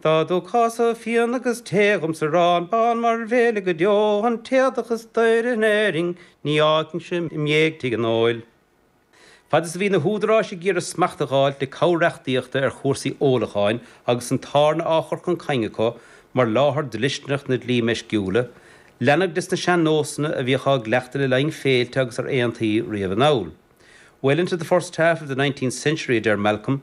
Dá dtugthása fíon agus tae dhom 's arán bán mar bhéile go deo an t-éadach is daoire in Éirinn ní fhágfainnse im' dhiaidh tigh an óil. Fad is a bhí na húdaráis ag iarraidh smacht a dh'fháilt le cabhair reachtaíochta ar chúrsaí ólacháin agus an tábhairne á chur chun cinn acu mar láthair dlisteanach na dí meisciúla, leanadh de sna sean-nósanna a bhíodh á gcleachtadh le linn féilte agus ar aontaí riamh anall. Well into the first half of the nineteenth century, a deir Malcolm,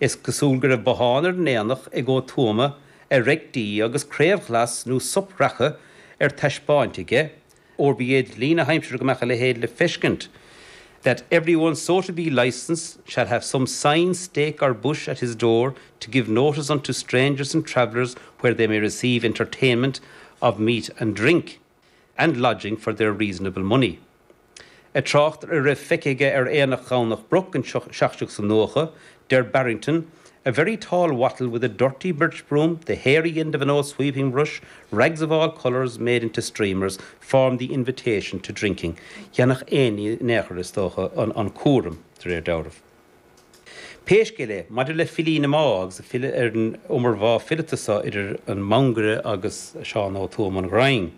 Is cosúil go raibh bothán ar an aonach ag Ó Tuama ag reic dí agus craobh ghlas nó sop reaca ar taispeáint aige, óir ba é dlí na haimsire go mbeadh a leithéid le feiscint, that every one so to be licensed shall have some sign, stake or bush at his door to give notice unto strangers and travellers where they may receive entertainment of meat and drink. and lodging for their reasonable money'. Ag trácht ar a raibh feicthe aige ar Aonach Dhomhnach Broc in 1790, deir Barrington, 'A very tall wattle with a dirty birch-broom, the hairy end of an old sweeping-brush, rags of all colours made into streamers, form the invitation to drinking'. Dhéanfadh éinne in aon chor, is dócha, an cúram, de réir dealraimh. Pé scéal é, maidir le filí na Máighe agus ag filleadh ar an iomarbhá fileata so idir an Mangaire agus Seán Ó Tuama an Ghrinn,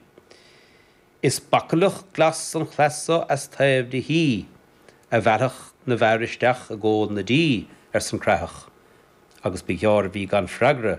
is bachallach glas an chleath so as taobh do thí, ag mealladh na bhfear isteach i gcomhól na dí, arsan Creathach, agus ba ghearr a bhí gan freagra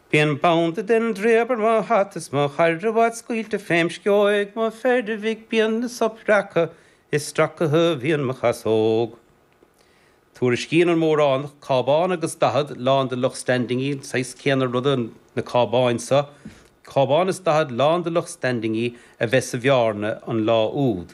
Bíonn banda den draoib ar mo hata is mo charabhat scaoilte fém scóig mo pheiribhic bíonn 'na sop reaca is stracaithe a bhíonn mo chasóg. Tuairiscíonn an Móránach cábán agus daichead, lán de lucht standingí, an saghas céanna ruda na cábáin seo, cábán is daichead lán de lucht standingí, a bheith sa Bhearna an lá úd.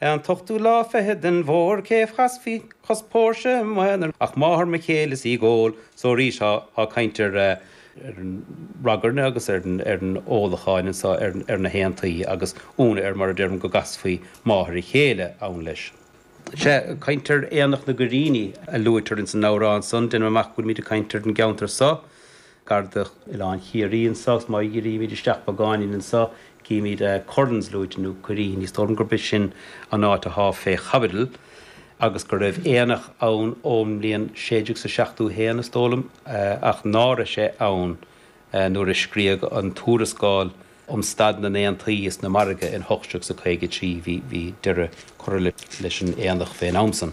An t-ochtú lá fichead den bhfómhar cé chasfaí cois póirse i m'aonar ach máthair mo chéile is í gol so arís ag caint ar an ragairne agus ar an ólacháin anso ar na haontaí agus ionadh air mar a deirim go gcasfaí máthair a chéile ann leis. Sea, caint ar aonach na gCoirríní a luaitear ins an amhrán san, deinim amach go bhfuilmíd ag caint ar an gceanntar so. gar do Oileán Chiarraí anso, agus má dhírímid isteach beagáinín anso, címid Currans luaite, nó Curreen, is dóigh liom gurb é sin an áit atá fé chaibidil, agus go raibh aonach ann ón mbliain 1671, is dóigh liom, ach ná raibh sé ann nuair a scríodh an tuarascáil um staid na n-aontaí is na margaí in 1853. Bhí deireadh curtha leis an aonach fén am san.